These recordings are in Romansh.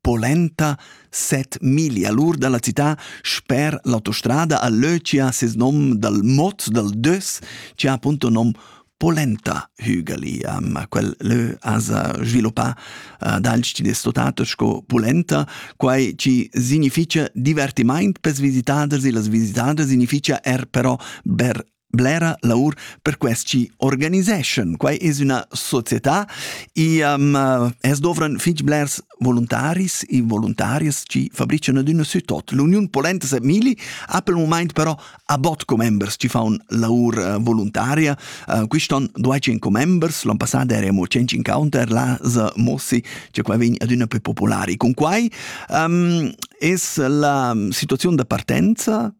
polenta set miglia lur dalla cità sper l'autostrada a Löcia ses nom dal mod dal Dös che ha appunto nom polenta hügeli. Um, quel lö asa sviluppa uh, dal stitato sco polenta, quai ci significia divertimaint per visitaders e las visitaders significia er però ber blera laur per quest chi organiseschan. Quai es üna società e um, es dovran fich blers voluntaris e voluntarias chi fabrican adüna sütot. L'Uniun Polenta Semili ha pel mumaint però a bot commembers chi faun laur uh, voluntaria. Uh, quiston duaicin commembers, l'an passada eremo 100 encounter, là za Mossi, che qua vegn adüna più popolari. Con quai um, es la situazione da partenza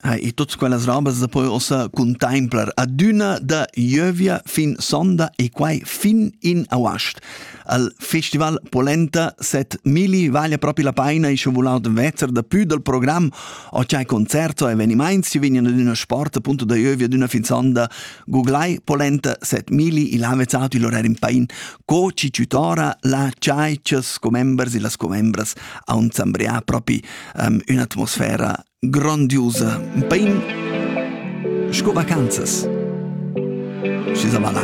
Ha, e tuts quellas robas da poi ossa contemplar adüna da ieuvia fin sonda e quai fin in auast. Al Festival Polenta set Mili vale propi la paina e sche volau vezer da più dal programm o c'hai concerto e evenimaints si vignan ad üna sport appunto da ieuvia d'üna fin sonda googlai Polenta set Mili e là vezzat il orar in pain co ci tutora la ciai cias commembers e las commembras a un zambrià propi um, un'atmosfera grondiusa, bein sco vacanzas. Schi sa va là.